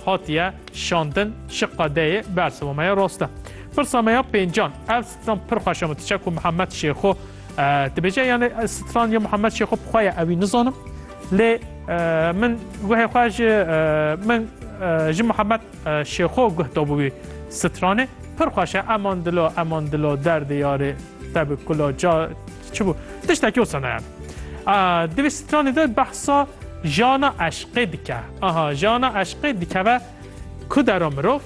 Hatiye şandin şiqa deyê bersima me ya rast e. Pirsa me ya pêncan ev stran pir xweş e min diçe ku Mihemed Şêxo dibêje yanê stran ya Mihemed Şêxo bi xwe ye ew wî nizanim lê min guhê xwe ji min ji Mihemed Şêxo guh dabû wî stranê pir xweş e eman dilo eman dilo derdê yarê te bi kula ca Çi bû? Tiştekî wisa ne ye. Di vê stranê de behsa jana eşqê dike. Aha jana eşqê dikeve ku dera mirov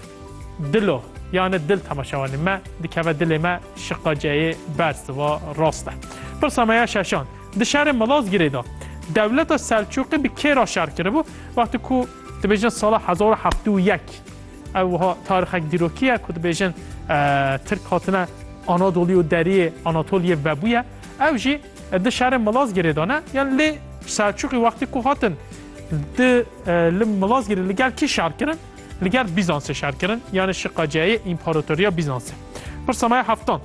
dilo yani dil temaşewanê me dikeve dilê me şiqaceyê ber siva rast e. Pirsa me ya şeşan. Di şerê Malazgirê de dewleta Selçûqî bi kê re şer kiribû wextê ku dibêjin sala hezar û heftê û yek Ew wiha tarixek dîrokî ye ku dibêjin Tirk hatine Anadolî û deriyê Anatoliyê vebûye. Ew jî di şerê Milazgirê de ne. Yan lê Selçûqî wextî ku hatin di li Milazgirê li gel kî şer kirin? Li gel Bîzansê şer kirin yanê şiqaceyê Împaratoriya Bîzansê. Pirsa me ya heftan.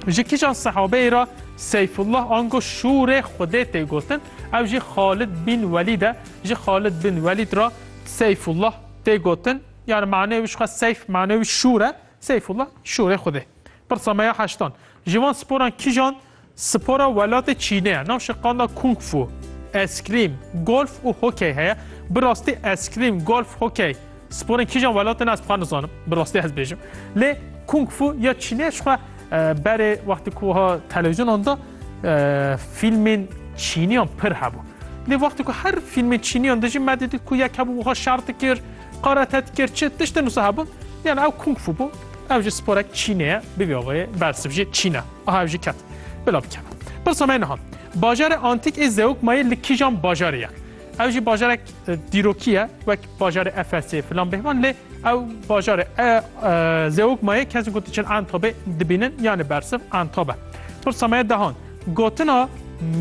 Ji kîjan sehabeyê re Seyfullah ango Şûrê Xwedê tê gotin? Ew jî Xalid bîn Welîd e. Ji Xalid bîn Welîd re Seyfullah tê gotin yani manê wî jixwe seyf manê wî şûr e Seyfullah şûrê Xwedê. Pirsa me ya heştan Ji van sporan kîjan spora welatê Çînê ye? Navşê qanda kung fu, eskrîm, golf û hokey heye. Bi rastî eskrîm, golf, hokey sporên kîjan welatê ne ez dixwar nizanim. Bi rastî ez bêjim. Lê kung fu ya Çînê jixwe Berê wextê ku wiha televîzyonan de fîlmên çîniyan pir hebû. Lê wextê ku her fîlmên çîniyan de jî me didît ku yek hebû wiha şer dikir, karate dikir, çi tiştin wisa hebûn. Yani ew kung fu bû. Ew jî sporek çînê ye. Bi vî awayê bersiv jî çîn e. Aha ev jî ket. Bila bikeve. Pirsa me niha. Bajarê antîk ê Zeugmayê li kîjan bajarê ye? Ew jî bajarek dîrokî ye wek bajarê Efesê filan bêhvan lê ew bajarê e Zeugmayê kes ku diçin Entobê dibînin yanê bersiv Entob e. Pirsa me ye dehan gotina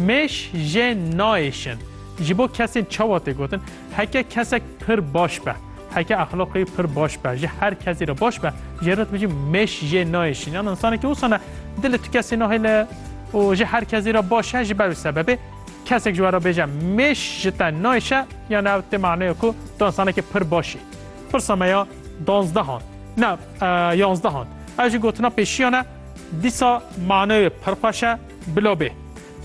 mêş jê nayêşin ji bo kesên çawa tê gotin heke kesek pir baş be heke exlaqê wî pir baş be ji her kesî re baş be jê re dibêjin mêş jê nayêşin yan insanekî wisa ne dilê tu kesî nahêle û ji her kesî re baş e ji ber wî sebebê Kesek ji we re bêje mêş ji te nayşe yan ev tê maneya ku tu insanekî pir baş î. Pirsa me ya danzdehan ne yanzdehan. Ev jî gotina pêşiyan e dîsa maneyê pir xweş e bila bê.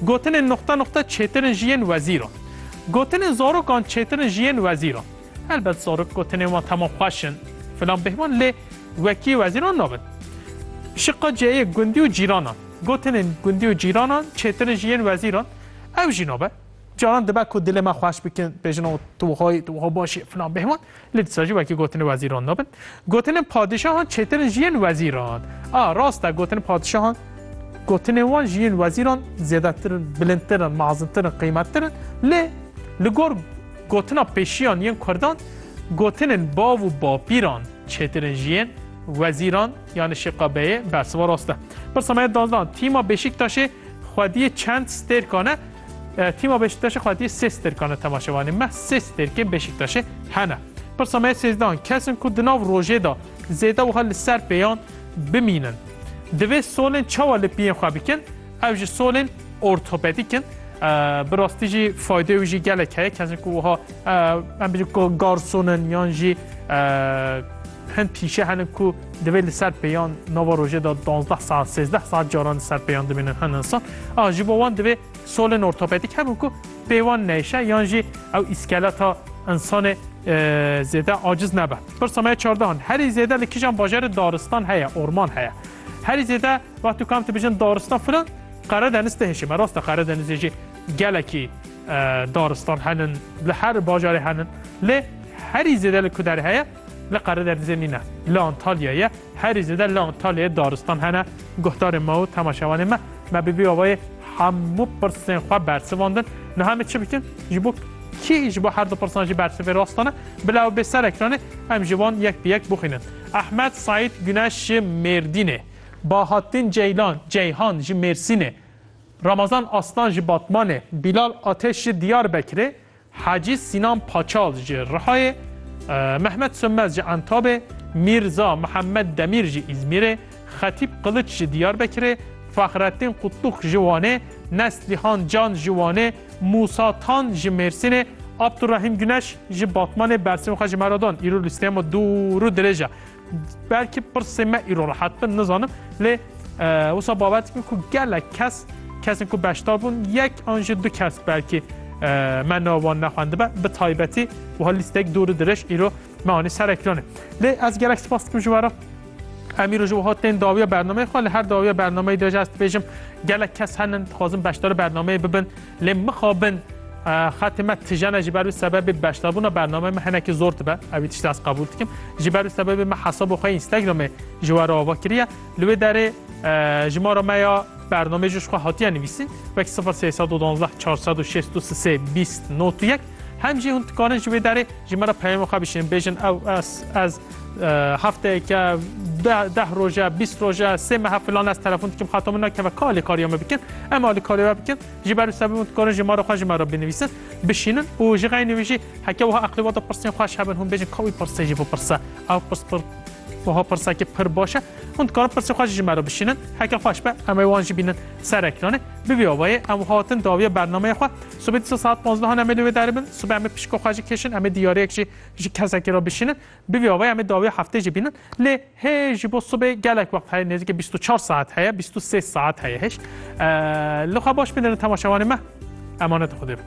Gotinên nuqte nuqte çêtir in ji yên wezîran. Gotinên zarokan çêtir in ji yên wezîran. Helbet zarok gotinên wan temam xweş in filan bêhman lê wekî wezîran nabin. Şiqa ciheyê gundî û cîranan. Gotinên gundî û cîranan çêtir in ji yên wezîran. Ew jî nabe. Caran dibe ku dilê me xweş bikin, bêjin oh tu wiha yî, tu wiha baş î filan bêhman. Lê dîsa jî wekî gotinên wezîran nabin. Gotinên padîşahan çêtir in ji yên wezîran. A, rast e, gotinên padîşahan gotinên wan ji yên wezîran zêdetir in, bilindtir in, mezintir in, qîmettir in. Lê li gor gotina pêşiyan yên kurdan, gotinên bav û bapîran çêtir in ji yên wezîran. Yanî şiqa beyê bersiva rast e. Pirsa me dazdan tîma Beşîktaşê xwediyê çend stêrkan e? Tîma Beşîktaşê xwediyê sê stêrkan e temaşevanê me sê stêrkên Beşîktaşê hene. Pirsa me sêzdan kesin ku di nav rojê de zêde wiha li ser pêyan bimînin. Divê solên çawa li piyên xwe bikin ew ji solên ortopedîk in. Bi rastî jî fayde wî jî gelek heye kesin ku wiha em bijî garsonin yan jî Hin pîşe hene ku divê li ser pêyan nava rojê de duwazdeh saet sêzdeh saet caran li ser pêyan dimînin hin insan. A ji bo wan divê solên ortopedîk hebin ku pê wan neyşe yan jî ew îskeleta insanê zêde aciz nebe. Pirsa me ya çardeh in. Herî zêde li kijan bajarê daristan heye, orman heye. Herî zêde wextê ku em dibijin daristan filan Qeredeniz tihişê me. Rast e Qeredenizê jî gelekî daristan henin, li her bajarê henin. Lê herî zêde li ku derê heye Li Qerederdizê nîne. Li Antalya ye. Herî zêde li Antalyayê daristan hene. Guhdarên me û temaşevanên me me bi vî awayê hemû pirsên xwe bersivandin. Niha em ê çi bikin? Ji bo kî ji bo her du pirsan jî bersivê rastan e? Bila ew bê ser ekranê em ji wan yek bi yek bixwînin. Ehmed Saîd Guneş ji Mêrdînê, Bahattin Ceylan Ceyhan ji Mêrsînê, Ramazan Aslan ji Batmanê, Bîlal Ateş ji Diyarbekirê, Hacî Sînan Paçal ji Rihayê, Mehmet Sönmez ji Entabê, Mîrza Mihemed Demîr ji Îzmîrê, Xetîp Qiliç ji Diyarbekirê, Fahrettîn Kutluk ji Wanê, Neslihan Can ji Wanê, Mûsa Tan ji Mêrsînê, Abdurehîm Guneş ji Batmanê bersivên xwe ji me re dan. Îro lîsteya me dûr û dirêj e. Belkî pirsê me îro rehat bin nizanim lê wisa babet bû ku gelek kes kesên ku beşdar bûn yek an ji du kes belkî me navan nexwendibe bi taybetî wiha lîstek dûr diriş îro me anî ser ekranê. Lê ez gelek spas dikim ji wera em îro ji wiha tên dawiya bernameyê xwe li her dawiya bernameyê de ez dibêjim gelek kes henin dixwazin beşdar bernameyê bibin Lê mixabin xetê me tijene ji ber wî sebebê beşdarbûna bernameyê me hinekî zor dibe ew tiştê ez qebûl dikim ji ber wî sebebê me hesaba xwe Instagramê ji we re ava kiriye li wê derê ji ma re me ya bernamê ji xwe hatiye nivîsîn wek 0312 463 20 not yek hem jî hûn dikarin ji wê derê ji me re peyama xwe bişînin bêjin ew ez ez Hefteyeke deh roje bîst roje sê mehe filan ez telefon dikim xato min nakeve ka alîkariya me bikin em alîkariya we bikin ji ber sebî min dikarin ji mara xwe ji me re binivîsin bişînin û ji xeynî wî jî heke wiha eqlî wata pirsên xweş hebin hûn bêjin ka wî pirsê jî bipirse ew pirs pir wiha pirsekî pir baş e hûn dikarin pirsê xwe ji me re bişînin heke xweş be em ê wan jî bînin ser ekranê bivî awayê em hatin dawiye bernameyê xwe subê dîsa saet panzdeh em ê li wê deribin subê em ê pişka xwe jî kêşin em ê diyariyek jî Ji kesekî re bişînin, bi vî awayê em ê dawî heftê jî bînin. Lê hê ji bo sibê gelek wext heye, nêzîkê bîst û çar saet heye, bîst û sê saet heye hêj. Li xwe baş bidin temaşevanê me. Emanetê Xwedê be.